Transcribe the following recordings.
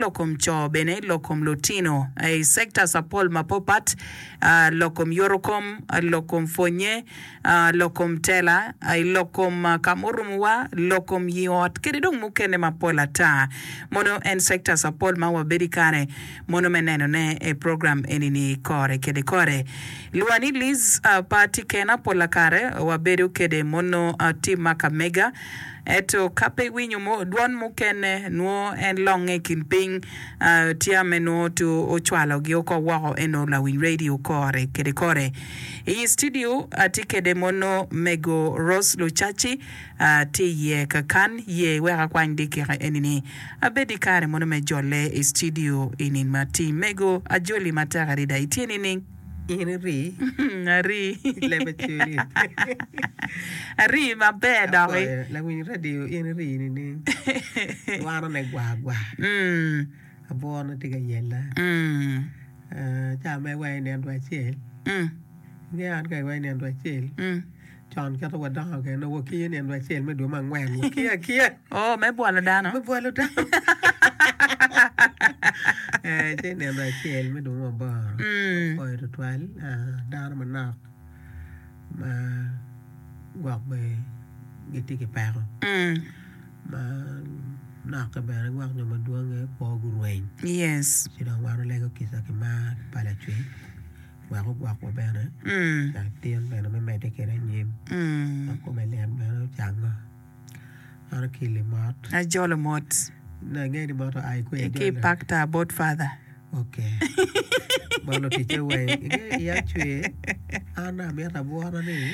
lok kom co bene, lok kom lutino, i sectors apol mapatpat, lok kom yotokom, lok kom pwonye, lok kom tela, lok kom ka ma orumowa, lok kom ii ot, kede dong mukene mapol ata. Mono en sectors apol ma wabedo i kare mono me nenone i program eni-ni kore kede kore. Lwani Liz, Pe atye kena, pol kare wabedo kede mono tim ma ka mega. Ento ka pe iwinyo dwon mukene, nwo en longe i kin piny. Tia me nwo to ocwalo gi oko woko eno lawiny radio kore kede kore. I yi studio atye kede mono mego Rose Lucaci tye i ye kakan ye wek akwany dikika eni ni abed i kare mono me jole i studio i nin ma ti mego ajoli matek adada itye nining? In iri Ari I lebe cweri. Ari maber doki. Apwoyo lawiny radio in iri nining? Wano ne gwa gwa. Abwor ne tye ka yella. Ca ma iweko inino two acel. Ingeyo an ka iweko inino two acel. Con kit ma wadongo kwede, wakiyo ni en dwe acel me dwe me angwen. Wakiyo akiya. Oh, me bwolo dano. Me bwolo dano. Eh, ci nino dwe acel me dwe me aboro. Mm. Oyo tutwal ah, dano manok ma gwok be gitye ki peko Mm. ma nokke bene gwok nyo madwonge kwo gurweny. Yes. Ci dong wan olego kica ki mar pa Lacwe. wek ogwokwa bene wek tin bene me medde kwede anyim wek kome lyet bene ocangnga meno ki limot ajolo mot angeyo ni mot oa i kweyo ki i pak tar bot father ok bot luticce weng ingeyo i acer an amito abwora ni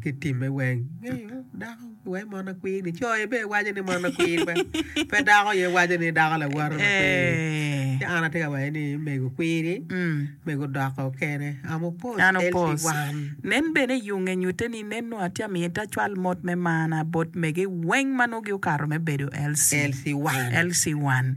Ki time weng ngeyo dako wai mon akwir ni co aye waco ni mon akwir pe dako aye waco ni dako lawote ci an atye ka waco ni mego kwiri mego doko kene am opos LC1 nen bene i yunge nyute ni nen nongo atye ka miti acwal mot me marna bot mege weng ma nongo giokato me bedo LC1.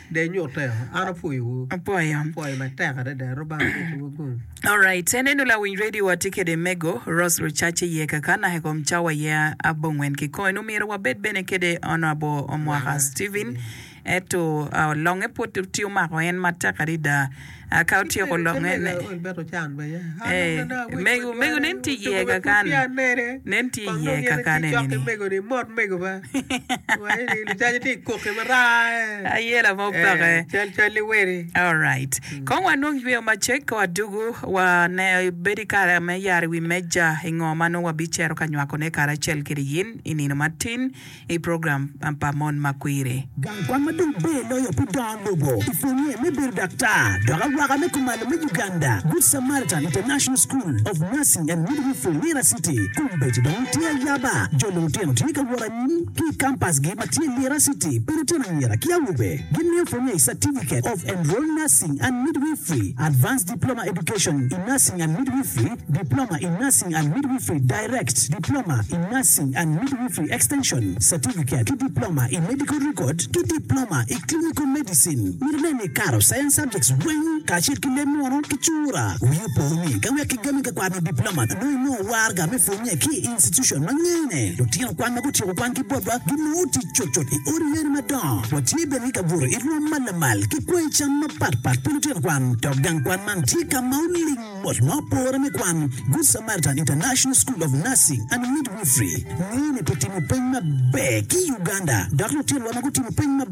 Alright en eno lawiny radio wa tye kede mego Rose Rucace iye kaka naka i kom cawa aye abo ngwen ki kong eno myero wa bed bene kede Honourable Omwaka Steven eto longe pud tye omako en matek adida. Ka otyeko longe ne, omego omego nen tye iye kakane nen tye iye kakane nini aye lama opake alright kong wanong yweyo macek ka wadugu wane bedo kare me yara i wi meja i ngo ma nongo wabicito ka nywakone karacel kede in i nino matin i program pa Mon ma Kwiri. Gang kwan ma dong ber loyo pi dongo lobo i pwonye me bedo daktar dok awaka me kumalo me Uganda, Good Samaritan International School of Nursing and Midwifery, Lira City, kombeddi dong watye ayaba. Jo lulutino tye ka wot anyim ki i kampasgi ma tye i Lira City pi lutino anyira ki awobe. Gimiyo pwonye i Certificate of Enrolled Nursing and Midwifery, Advanced Diploma Education in Nursing and Midwifery, Diploma in Nursing and Midwifery, Direct, Diploma in Nursing and Midwifery Extension, Certificate, ki Diploma i Medical Record ki Diploma i Clinical Medicine. Myero nen ni ikato Science Subjects weng kacel ki leb munu ki cura. Wii opo ni ka wek kigami ka kwano Diploma nongo inongo warga me pwonye ki i institution ma ngene. Lutino kwan ma gutyeko kwan ki botwa ginongo tic cutcut i odi yen madongo. Watye bene ki ka buto i rwom ma lamal ki kwango i cam mapatpat pi lutino kwan dok gang kwan man tye ka ma oling. Bot ma opore me kwan, Good Samaritan International School of Nursing and Midwifery ngene pi timo peny maber ki Uganda dok lutinowa ma gutimo peny maber